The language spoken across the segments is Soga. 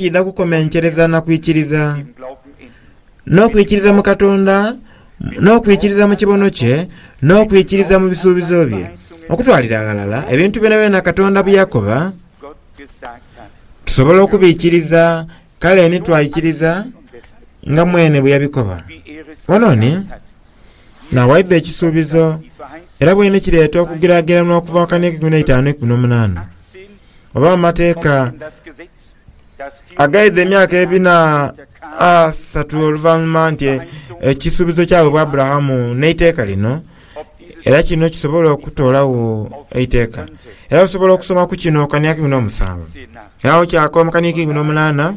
Idha kukomenkereza na kwikiriza, n'okwikiriza mu Katonda, n'okwikiriza mu kibono kye, n'okwikiriza mu bisuubizo bye. Okutwalira ghalala ebintu byonabyona Katonda bye yakoba, tusobola okubikiriza, kale ni twaikiriza nga mwene bwe yabikoba. Ono ni n'awaidha ekisuubizo, era bwene kireeta okugeraageranwa okuva mu Akaana ek'eikumi n'eitaanu n'eikumi n'omunaana, oba Amateeka. agaidha emyaka ebina asatu oluvanhuma nti ekisuubizo kyawebwa Aburahamu n'eiteeka lino, era kino kisobola okutoolagho eiteeka. Era osobola okusoma ku kino kania kumi n'omusanvu. Era awo kyakoba mu kania k'eikumi n'omunaana,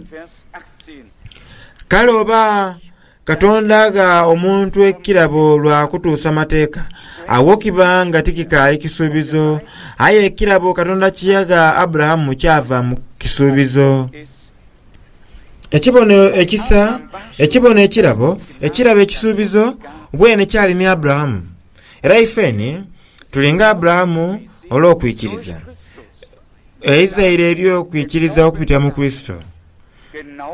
Kale oba Katonda agha omuntu ekirabo lwa kutuusa Mateeka, agho kiba nga tikikaali kisuubizo. Aye ekirabo Katonda kye yagha Aburahamu kyava mu kisuubizo. Ekibono ekisa, ekibono ekirabo, ekirabo ekisuubizo, bwene kyali ni Aburahamu. Era ifeeni tuli nga Aburahamu olw'okwikiriza. Eizaire ery'okwikiriza okupitira mu Kurisito.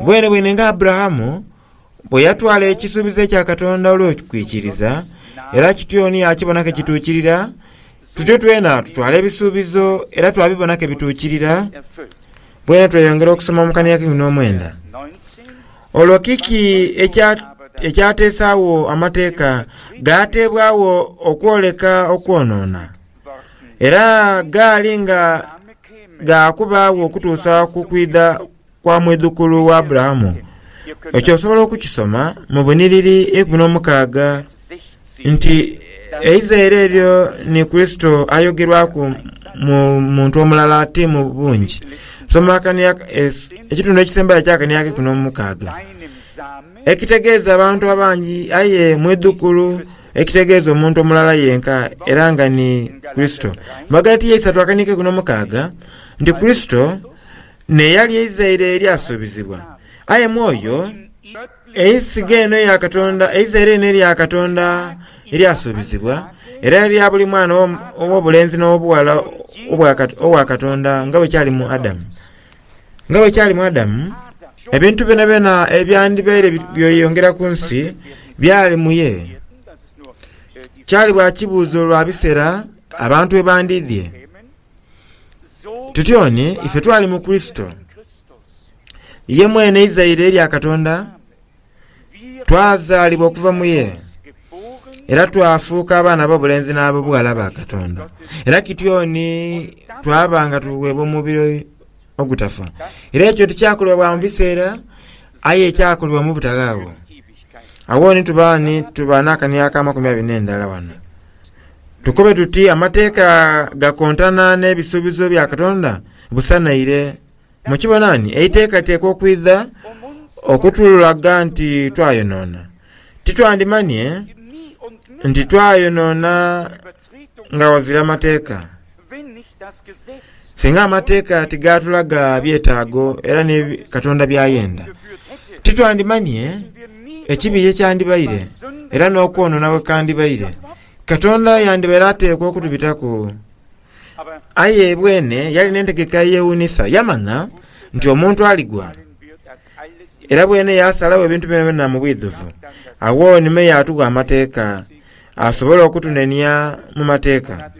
Bwenebwene nga Aburahamu, Bwe yatwala ekisuubizo ekya Katonda olw'okwikiriza, era kityo ni yaakibona ke kituukirira, tutyo twena tutwala ebisuubizo era twabibona ke bituukirira. Bwene tweyongera okusoma mu kania keikumi n'omwenda. Olwo kiki ekya ekyateesaagho amateeka gaateebwagho okwoleka okwonoona? Era gaali nga ga kubaagho okutuusa ku kwidha kwa mwidhukulu wa Aburahamu. Ekyo osobola okukisoma mu bunhiriri eikumi n'omukaaga nti eizaire eryo ni Kurisito ayogerwaku mu muntu omulala ti mu bungi. Soma akania, ekitundu ekisembayo eky'akania ak'eikumi n'omukaaga, ekitegeeza abantu abangi aye mwidhukulu ekitegeeza omuntu omulala yenka era nga ni Kurisito. Mu Bagalatiya eisatu akania ak'eikumi n'omukaaga nti Kurisito n'eyali eizaire eryasuubizibwa. Aye Mwoyo, eisiga eno eya Katonda, eizaire lino erya Katonda eryasuubizibwa, era erya buli mwana ow'obulenzi n'ow'obughala owa Katonda nga bwe kyali mu Adamu. Nga bwe kyali mu Adamu, ebintu byonabyona ebyandibaire byeyongera ku nsi byali mu ye. Kyali bwa kibuuzo lwa bisera abantu we bandiidhie. Tutyone ife twali mu Kurisito, ye mwene izaire lya Katonda, twazaalibwa okuva mu ye, era twafuuka abaana ab'obulenzi n'ab'obughala ba Katonda. Era kityoni twaba nga tuweebwa omubiri ogutafa. Era ekyo tikyakolebwa bwa mu biseera, aye kyakolebwa mu butaghaawo. Agho ni tuba ni tuba n'akani ak'amakumi abiri n'endala wano. Tukobe tuti amateeka gakontana n'ebisuubizo bya Katonda busa naire. Mukibona ni eiteeka teekwa okwidha okutulaga nti twayonoona. Titwandimanye nti twayonoona nga ghazira mateeka. Singa amateeka tigaatulaga byetaago era ni Katonda by'ayenda, titwandimanye ekibi ye kyandibaire era n'okwonoona bwe kandibaire. Katonda yandibaire ateekwa okutubitaku. Aye bwene yali n'entegeka eyewuunisa. Yamanya nti omuntu aligwa. Era bwene yaasalagho ebintu byonabyona mu bwidhuvu. Agho ni me yaatugha amateeka, asobole okutunenia mu mateeka.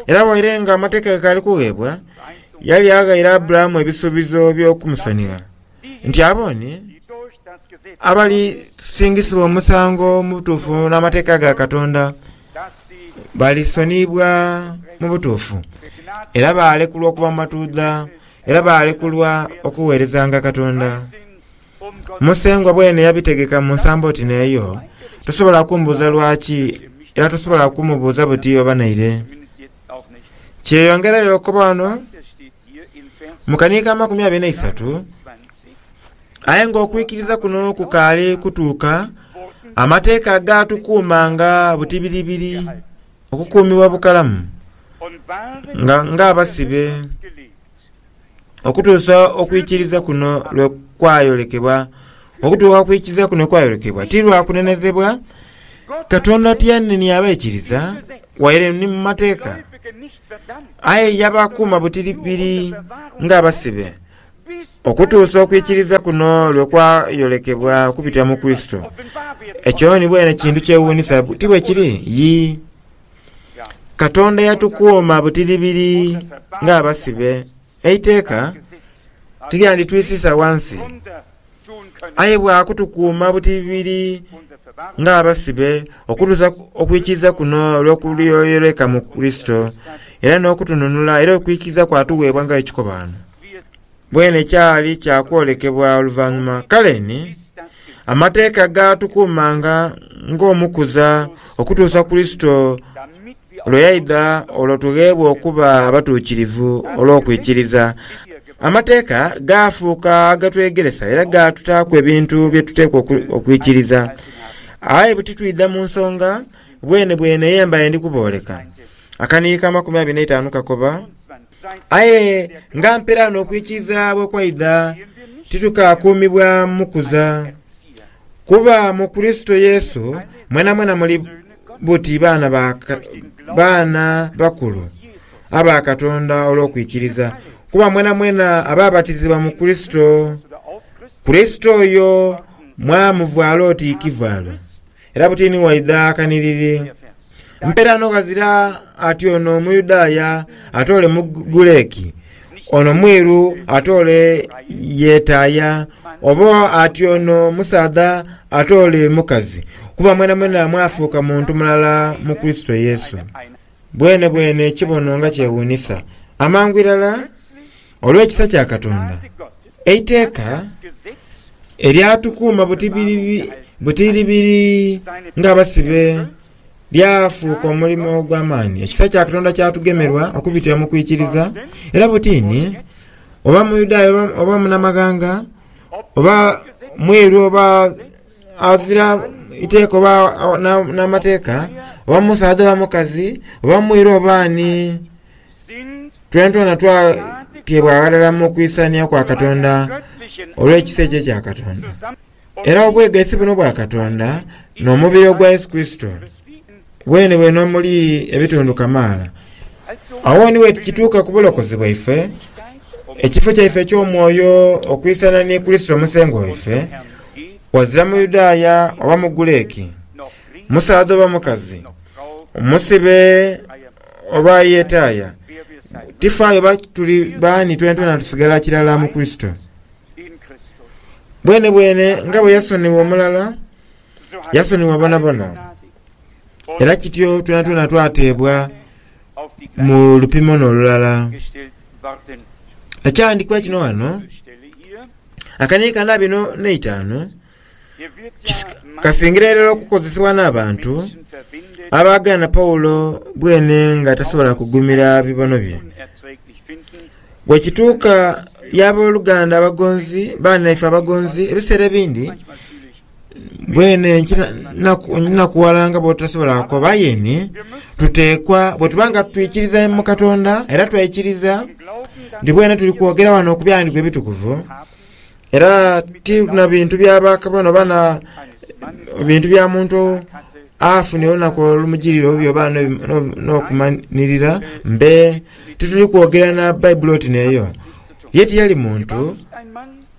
Era waire nga amateeka gakaali kugheebwa, yali aghaire Aburahamu ebisuubizo by'okumusonigha, nti abo ni abalisingisibwa omusango mu butuufu n'amateeka ga Katonda balisoniibwa mu butuufu, era baalekulwa okuva mu matuudha. era baalekulwa okugheerezanga Katonda. Musengwa bwene yabitegeka mu nsambo oti n'eyo, tosobola kumbuuza lwaki era tosobola kumubuuza buti oba naire. Kyeyongerayo okukoba wano mu kani k'amakumi abiri n'eisatu, aye ng'okwikiriza kuno kukaali kutuuka, amateeka gaatukuumanga butibiribiri. Okukuumibwa bukalamu nga ng'abasibe okutuusa okwikiriza kuno lwe kwayolekebwa. Okutuuka ku kwikiriza kuno kwayolekebwa ti lwa kunenhezebwa Katonda tiyanenia abaikiriza waire ni mu mateeka, aye yabakuuma butiribiri ng'abasibe. Okutuusa okwikiriza kuno lwe kwayolekebwa okubitira mu Kurisito, ekyo ni bwene kintu kyewuunisa, ti bwe kiri? Yii. Katonda yatukuuma butiribiri ng'abasibe. Eiteeka tiryanditwisiisa ghansi. aye bwa kutukuuma butibibiri ng'abasibe okutuusa okwikiriza kuno olw'okulyoyereka mu Kurisito era n'okutununula era okwikiriza kwatuweebwa nga ekikobaano. Bwene kyali kya kwolekebwa oluvannyuma. Kale ni, amateeka gaatukuumanga ng'omukuza okutuusa Kurisito Lwe yaidha olwo tugheebwa okuba abatuukirivu olw'okwikiriza. Amateeka gaafuuka agatwegeresa era gaatutaaku ebintu bye tuteekwa okwikiriza. Aye bwe titwidha mu nsonga, bwenebwene ye mbaire ndi kubooleka. Akaniiri ka makumi abiri n'eitaanu kakoba, Aye nga mpera n'okwikiriza bwe kwaidha, titukaakuumibwa mu kuza. Kuba mu Kurisito Yesu mwenamwena muli. buti baana ba baana bakulu aba Katonda olw'okwikiriza, kuba mwenamwena abaabatizibwa mu Kurisito, Kurisito oyo mwamuvwala oti ikivaalo, era buti ni waidha kaniriri. Mpeerano ghazira ati ono Muyudaaya ate ole Muguleki, Ono mwiru ate ole yetaaya, oba ati ono musaadha ate ole mukazi, kuba mwenamwena mwafuuka muntu mulala mu Kurisito Yesu. Bwenebwene ekibono nga kyewuunisa! Amangu irala, olw'ekisa kya Katonda, eiteeka eryatukuuma butiribiri ng'abasibe Byafuuka omulimo ogw'amaani ekisa kya Katonda kyatugemerwa okubitira mu kwikiriza, era butiini oba Muyudaaya oba, oba munamaghanga oba mweru oba azira iteeka oba a- na- n'amateeka oba musaadha oba mukazi oba mwiru oba ani twentwena twateebwa ghalala mu kwisania kwa Katonda olw'ekisa ekyo ekya Katonda. Era obwegaisi buno bwa Katonda n'omubiri ogwa Yesu Kurisito bwene bwene omuli ebitundu kamaala. Agho ni wekituuka ku bulokozi bwaife, ekifo kyaife eky'omwoyo okwisana ni Kurisito Musengwa waife, ghazira Muyudaaya oba Mugureki, musaadha oba mukazi, musibe oba ayetaaya, tifaayo oba tuli baani twenatwena tusigala kirala mu Kurisito. Bwenebwene nga bwe yasonigha omulala, yasonigha bonabona. Era kityo twenatwena twateebwa mu lupimo n'olulala. Ekyawandiikibwa kino ghano, akaniika na bino n'eitaanu. Kasingira irala okukozesebwa n'abantu abaagaana Paulo bwene nga tasobola kugumira bibono bye. Bwe kituuka y'abooluganda abagonzi, baanaife abagonzi, ebiseera ebindi bwene nkinakuwala nga bw'otasobola kukoba yeni, tuteekwa bwe tuba nga twikiriza mu Katonda era twaikiriza nti bwene tuli kwogera wano ku byandiku ebitukuvu, Era ti na bintu bya bakabona oba na bintu bya muntu afunire olunaku olumugirira obubi oba n'okumanirira mbe tituli kwogera na baibuli oti neeyo ye tiyali muntu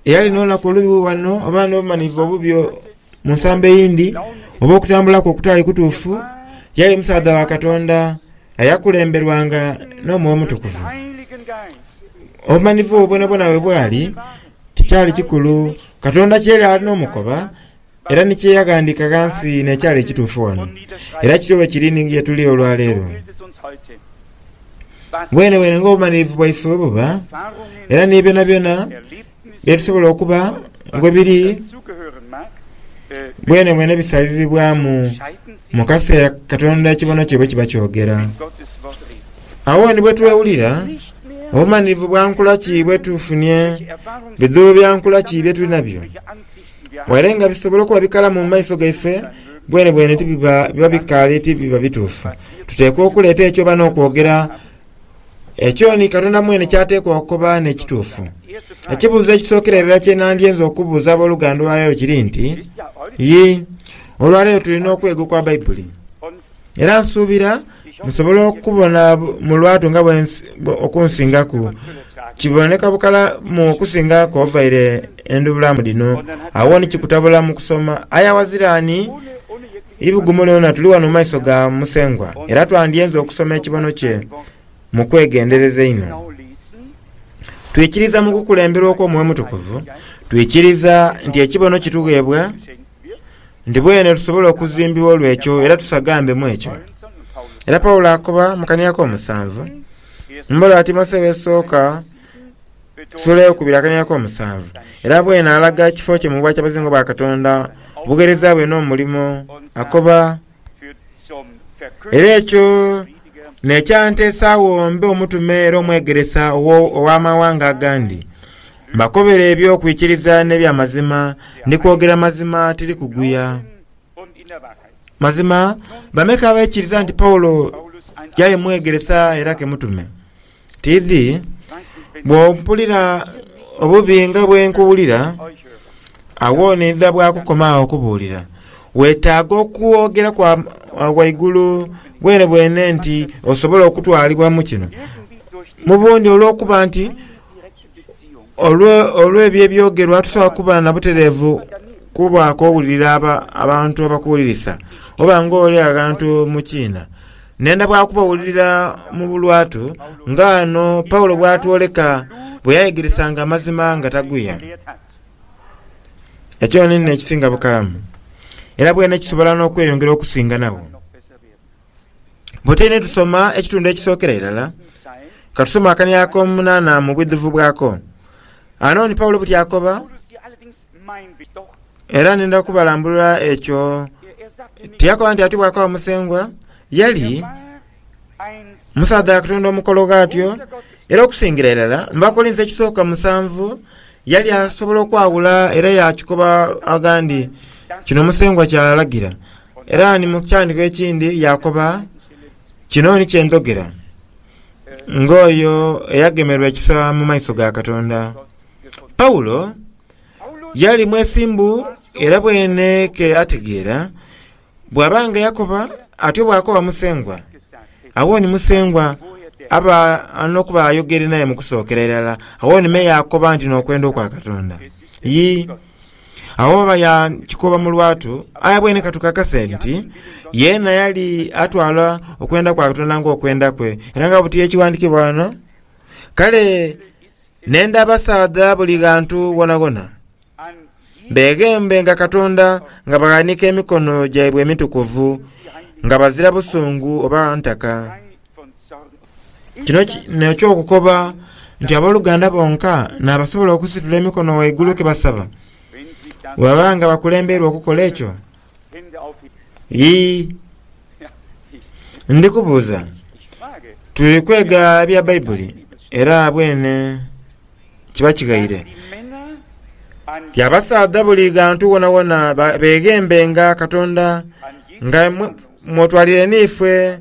eyali n'olunaku olubi wano oba n'obumanyirivu obubi Mu nsambo eyindi, oba okutambula kwe okutaali kutuufu, yali musaadha wa Katonda eyakulemberwanga n'Omwoyo Omutukuvu. Obumanhifu obwo bwonabwona bwe bwali, tikyali kikulu Katonda kye yali ali n'omukoba era ni kye yaghandiika ghansi n'ekyali ekituufu ghano. Era kityo bwe kiri ni ye tuli olwa leero. Bwenebwene ng'obumanhirivu bwaife bwe buba, era ni byonabyona Ebisobola okuba bwe biri bwenebwene bisalizibwamu mu kaseera Katonda ekibono kye bwe kiba kyogera. Agho ni bwe twewulira obumanirivu bwa nkula ki bwe tufunye, bidhuubo bya nkula ki bye tuli nabyo. Waire nga bisobola okuba bikalamu mu maiso gaife, bwenebwene biba bikaali ti biba bituufu. Tuteekwa okuleeta ekyo oba n'okwogera. Ekyo ni Katonda mwene ky'ateekwa okukoba n'ekituufu. Ekibuuzo ekisookera irala kye nandyenze okubuuza ab'oluganda olwaleero kiri nti, Yi, olwaleero tuli n'okwega okwa Baibuli. Era nsuubira nsobola okubona mu lwatu nga bwe okunsingaku kiboneka bukalamu okusinga kw'ovaire endubulamu dhino, agho ni kikutabula mu kusoma aya wazira ni Eibugumu lyona tuli ghano mu maiso ga Musengwa, era twandyenze okusoma ekibono kye mu kwegendereza einho. Twikiriza mu kukulemberwa okw'Omwoyo Omutukuvu, twikiriza nti ekibono kitugheebwa, nti bwene tusobola okuzimbibwa olw'ekyo era tusagambe mu ekyo. Era Paulo akoba mu kania k'omusanvu, mu mboola ya Timotheo esooka, Sula ey'okubiri akanenya ak'omusanvu, era bwena alaga ekifo kye mu bwakyabazinga bwa Katonda, obugheereza bwe n'omulimo akoba. Era ekyo n'ekyanteesaagho mbe omutume era omwegeresa ow'amawanga agandi, mbakobere eby'okwikiriza n'eby'amazima, ndi kwogera mazima tiri kuguya. Mazima bameka abaikiriza nti Paulo yali mwegeresa era ke mutume? Tiidhi bw'ompulira obubi nga bwe nkuwulira, agho n'oidha bwakukoma agho okubuulira. Weetaaga okwogera kwa ghaigulu bwenebwene nti osobola okutwalibwa mu kino. Mu bundi olw'okuba nti Olw'ebyo ebyogerwa, tusobola kuba na butereevu ku bwakowulira abantu abakuwulirisa oba ng'oli aghantu mu kiina, n'enda bwa kubawulira mu bulwatu, nga ghano Paulo bw'atwoleka bwe yayegeresanga amazima nga taguya. Ekyo niinho ekisinga bukalamu, era bwene kisobola n'okweyongera okusinga nagho. Bwe tuidha tusoma ekitundu ekisookera irala, ka tusome akania ak'omunaana mu bwidhuvu bwako. Ano ni Paulo buti akoba, era nindha kubalambulula ekyo. Tiyakoba nti ati bwakaba Musengwa yali musaadha Katonda omukolo ghatyo, era okusingira irala mu Bakolinso ekisooka musanvu yali asobola okwaghula era yaakikoba aghandi kino Musengwa ky'alagira. Era ni mu kyandiko ekindi yaakoba, Kino ni kye ndhogera, ng'oyo eyagemerwa ekisa mu maiso ga Katonda. Paulo yali mwesimbu era bwene ke ategeera bw'aba nga yakoba atyo bw'akoba Musengwa, agho ni Musengwa aba n'okuba ayogere naye mu kusookera irala, agho ni me yaakoba nti n'okwenda okwa Katonda. Yi. Agho baba yaakikoba mu lwatu, aye bwene ka tukakase nti yeena yali atwala okwenda kwa Katonda ng'okwenda kwe, era nga buti y'ekiwandikibwa ghano, Kale nenda abasaadha buli ghantu ghoonaghona, beeghembe nga Katonda, nga baghanika emikono gyaibwe emitukuvu, nga bazira busungu oba ntaka. Kino n'eky'okukoba nti ab'oluganda bonka n'abasobola okusitula emikono waigulu ke basaba. Bwebaba nga bakulembeirwa okukola ekyo, yii, ndi kubuuza, tuli kwega bya Baibuli era bwene kiba kighaire. Ti abasaadha buli ghantu wonawona beeghembe nga Katonda nga mw'otwalire n'ifwe.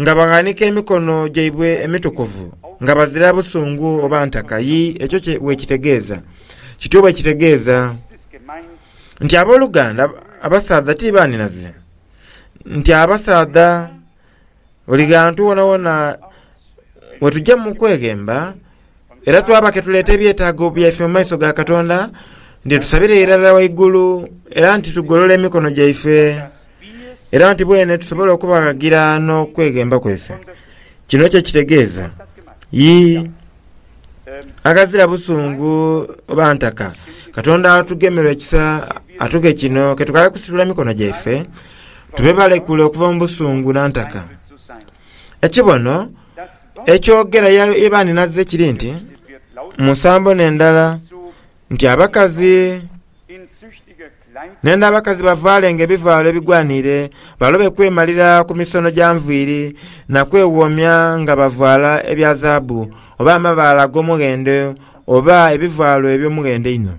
nga baghanika emikono gyaibwe emitukuvu, nga bazira busungu oba ntaka. Yii, ekyo kye bwekitegeeza. Kityo bwekitegeeza. Nti ab'oluganda, abasaadha ti baanhinaze. Nti abasaadha, buli ghantu wonawona we tugya mu kweghemba, Era twaba ke tuleeta ebyetaago byaife mu maiso ga Katonda, nti tusabire irala waigulu, era nti tugolola emikono gyaife, era nti bwene tusobola okubaghagira n'okweghemba kwaife. Kino kye kitegeeza? Yii. Aghazira busungu oba ntaka, Katonda atugemerwa ekisa atughe kino ke tukaale kusitula mikono gyaife, tube balekule okuva mu busungu na ntaka. Ekibono, Ekyogera ye bandhinaze kiri nti, Mu nsambo n'endala, nti abakazi n'enda abakazi bavaalenga ebivaalo ebigwaniire, balobe kwemalira ku misono gya nviiri na kwewoomya nga bavaala ebya zaabu, oba amabaale ag'omughendo, oba ebivaalo eby'omughendo einho.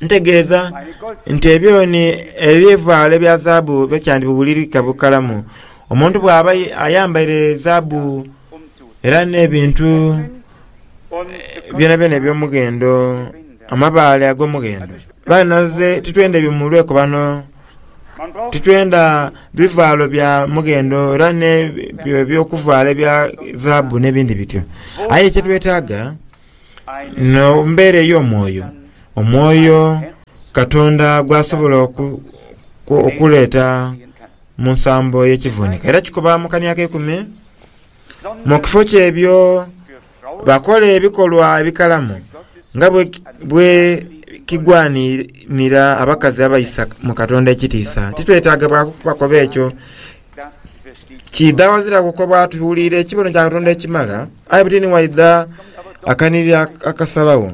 Ntegeeza nti ebyoni ebivaalo ebya zaabu byo kyandibubulirika bukalamu. Omuntu bw'aba ayambaire zaabu era n'ebintu byonabyona eby'omughendo, amabaale ag'omughendo. Kale naife titwenda bimulwe ku bano, titwenda bivaalo bya mughendo era n'ebyo eby'okuvaala ebya zaabu n'ebindi bityo. Aye kyetwetaaga Mu mbeera ey'omwoyo, omwoyo Katonda gwasobola okuleeta mu nsambo y'ekivuuniko era kikoba mu kani akeikume. Mu kifo ky'ebyo, bakola ebikolwa ebikalamu nga bwe kigwanira abakazi abaisa mu Katonda ekitiisa. Titwetaaga bakoba ekyo. Kiidha ghaziraku kwe baatuhulira ekibono kya Katonda ekimala, aye buti ni waidha akanhirira akasalagho.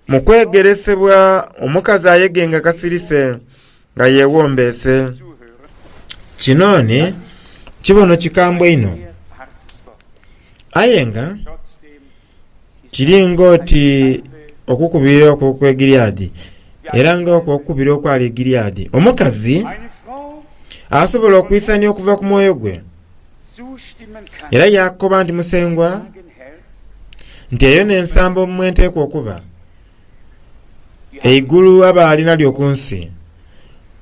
Mu kwegeresebwa, omukazi ayege nga kasirise, nga yeewombeese. Kino ni kibono kikambwe inho. Aye nga. Kiri ng'oti okukubira okwo okw'e Gileadi, era ng'okwo okukubira okwali e Gileadi. Omukazi asobola okwisania okuva ku mwoyo gwe, era yaakoba nti, Musengwa, nti eyo n'ensambo mwe nteekwa okuba, eigulu abaali nalyo ku nsi,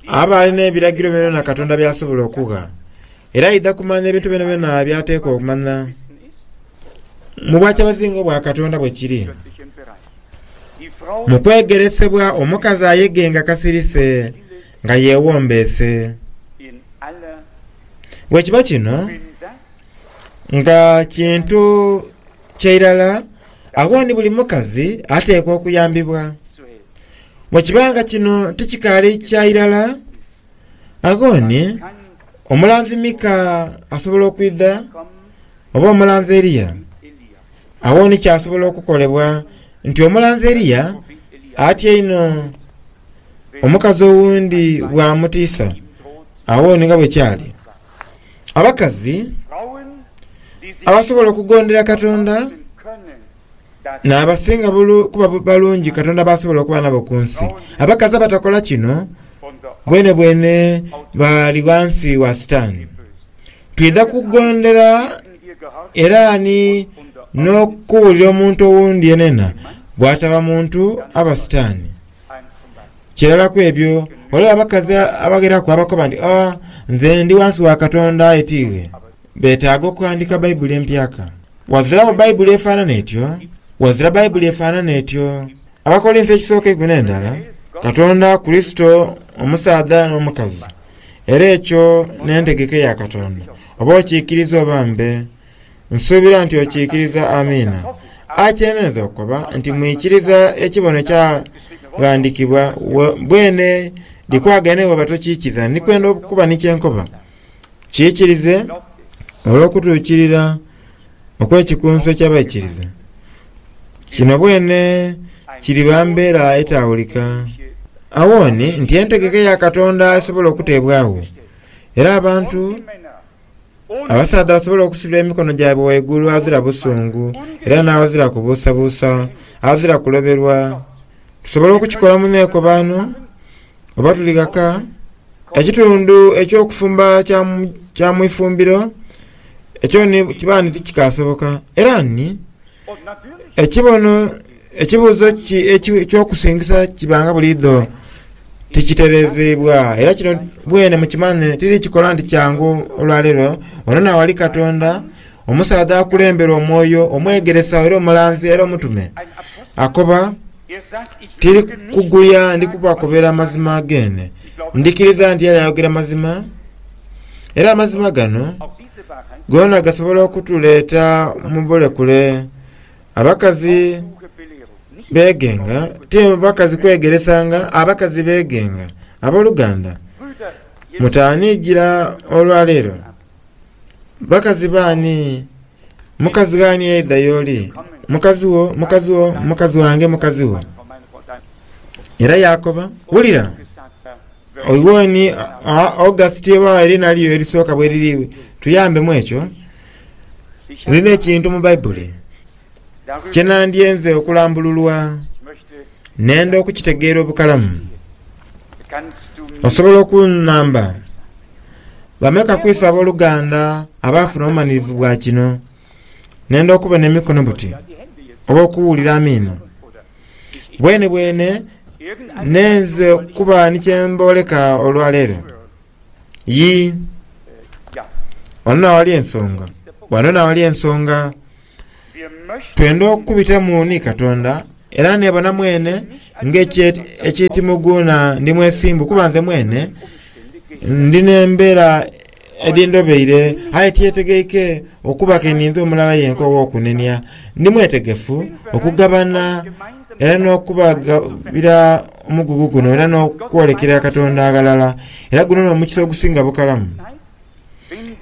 abaali n'ebiragiro byonabyona Katonda by'asobola okugha. Era aidha kumanya ebintu byonabyona by'ateekwa okumanya. Mu bwakyabazinga obwa Katonda bwe kiri. Mu kwegeresebwa omukazi ayege nga kasirise, nga yeewombeese. Bwe kiba kino, nga kintu kya irala, agho ni buli mukazi ateekwa okuyambibwa. Bwe kiba nga kino tikikaali kya irala, Agoni, omulanzi Mika asobola okwidha, oba omulanzi Eliya? Agho ni kyasobola okukolebwa nti omulanzi Eliya atya einho omukazi owundi bw'amutiisa. Agho ni nga bwe kyali. Abakazi abasobola okugondera Katonda. N'abasinga kuba balungi Katonda b'asobola okuba nabo ku nsi. Abakazi abatakola kino, bwenebwene bali ghansi wa Sitaani. Twidha kugondera era ni n'okuwulira omuntu owundi yenayena bw'ataba muntu aba Sitaani. Kirala ku ebyo, ghaligho abakazi abagheraku abakoba nti, Oh, nze ndi ghansi wa Katonda aye ti iwe. Beetaaga okuhandika Baibuli empyaka. Waziragho Baibuli efaanana etyo, wazira Baibuli efaanana etyo. Abakolinso ekisooka eikumi n'endala, Katonda, Kurisito, omusaadha n'omukazi. Era ekyo n'entegeka eya Katonda, oba okiikiriza oba mbe. Nsuubira nti okiikiriza. Amiina. Akyenenza okukoba nti mwikiriza ekibono kyaghandikibwa. Bwene, dhikwagane bwoba tokiikiza. Ndikwenda okuba ni kye nkoba. Kiikirize, olw'okutuukirira okw'ekikunsu eky'abaikiriza, kino bwene kiriba mbeera etaawulika. Agho ni nti entegeka ya Katonda esobola okuteebwagho, era abantu abasaadha basobola okusuula emikono gyaibwe waigulu aghazira busungu era n'aghazira kubuusabuusa, aghazira kuloberwa. Tusobola okukikola mu neekobaano. Oba tuli ghaka, ekitundu eky'okufumba kya mu ifumbiro ekyo ni kiba nti tikikaasoboka. Era ni ekibono ekibuuzo eky'okusingisa kibanga buliidho tikitereezeibwa. Era kino bwene mukimanye tiri kikola nti kyangu olwaleero. Ono naawali Katonda, omusaadha akulemberwa Omwoyo, omwegeresa era omulanzi era omutume, akoba. Tiri kuguya, ndi kubakobera amazima geene. Ndhikiriza nti ali ayogera mazima, era amazima gano goona gasobola okutuleeta mu bulekule. Abakazi beegenga, ti bakazi kwegeresanga, abakazi beegenga. Aboluganda, mutaaniijira olwaleero. Bakazi b'ani? Mukazi gh'ani eidha y'oli? Mukazi wo, mukazi wo, mukazi wange, mukazi wo. Era yaakoba, Wulira, oiwoni August ewaagho eriina lyo erisooka bwe liri, tuyambemu ekyo. Lina ekintu mu Baibuli. Kye nandyenze okulambululwa nenda okukitegeera obukalamu. Osobola okunhamba bameka ku ife ab'oluganda abaafuna obumanirivu bwa kino? Nenda okubona emikono buti oba okuwulira amiino. Bwenebwene neenze okuba ni kye mbooleka olwa leero? Yii. Ghano naghali ensonga. Ghano naghali ensonga. Twendha okukubitamu ni Katonda, era nebona mwene nga eky'ekimuguuna ndi mwesimbu, kuba nze mwene ndi n'embeera edhindobeire, aye tyetegeike okuba ke ninze omulala yenka ow'okunenia. Ndi mwetegefu okugabana era n'okubagabira omugugu guno era n'okwolekera Katonda aghalala, era guno n'omukisa ogusinga bukalamu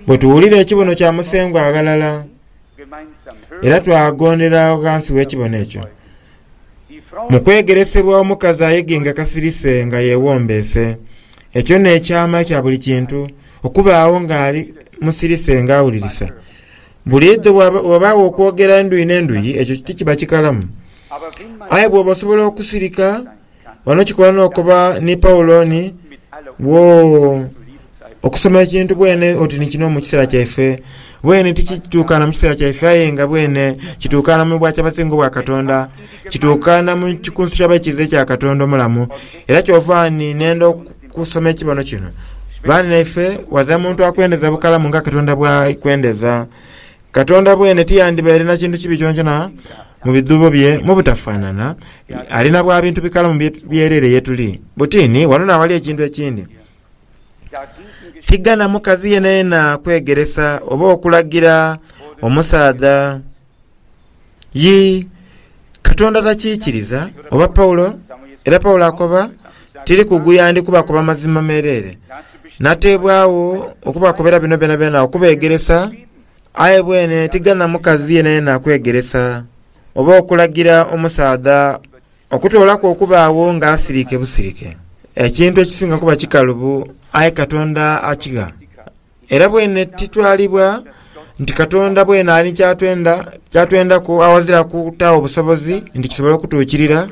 bwe tuwulira ekibono kya Musengwa aghalala. Era twagondera agho ghansi w'ekibono ekyo. Mu kwegeresebwa omukazi ayegenga kasirise nga yeewombeese. Ekyo n'ekyama kya buli kintu, okubaagho ng'ali musirise ng'awulirisa. Buliidho bwabaagho okwogera endhuyi n'endhuyi, ekyo tikiba kikalamu. Aye bwoba osobola okusirika, Ghano kikola n'okuba ni Paulo ni wo. Okusoma ekintu bwene oti ni kino mu kiseera kyaife, bwene tikituukaana mu kiseera kyaife aye nga bwene kituukaana mu bwakyabazinga obwa Katonda, kituukaana mu kikunsu ky'abaikiiza ekya Katonda omulamu. Era kyova ni neenda okusoma ekibono kino. Baanineefe, wadha muntu akwendeza bukalamu nga Katonda bw'akwendeza. Katonda bwene tiyandibaire na kintu kibi kyonakyona mu bidhuubo bye mu butafaanana, ali na bwa bintu bikalamu byereere ye tuli. Buti ni wano n'awali ekintu ekindi. Tighana mukazi yenayena kwegeresa oba okulagira omusaadha. Yii, Katonda takiikiriza, oba Paulo, era Paulo akoba. tiri kuguya ndi kubakoba mazima meereere. Nateebwagho okubakobera bino byonabyona okubeegeresa, aye bwene tighana mukazi yenayena kwegeresa oba okulagira omusaadha okutoolaku okubaagho ng'asirike busirike. Ekintu ekisinga kuba kikalubu, aye Katonda akigha. Era bwene titwalibwa nti Katonda bwene ali ni kyatwenda kyatwendaku awazira kutaagho busobozi nti kisobole okutuukirira.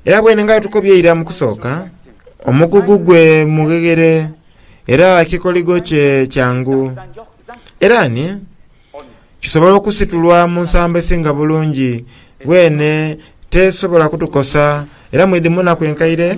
Era bwene nga bwetukobye eira mu kusooka, omugugu gwe mugheghere era ekikoligo kye kyangu. Era ni kisobola okusitulwa mu nsambo esinga bulungi, bwene tesobola kutukosa era mwidhi mu naku enkaire.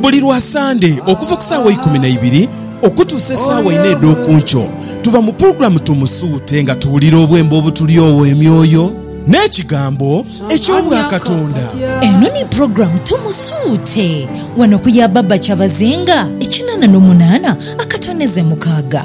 Buli lwa Sande okuva ku saawa eikumi na ibiri okutuusa esaawa inha edh'oku nkyo, tuba mu pulogulaamu Tumusuute nga tuwulira obwembo obutulyowa emyoyo n'ekigambo eky'Obwakatonda. Eno ni pulogulaamu Tumusuute. Wano ku ya Baba Kyabazinga, ekinana n'omunana akatoneze mukaaga.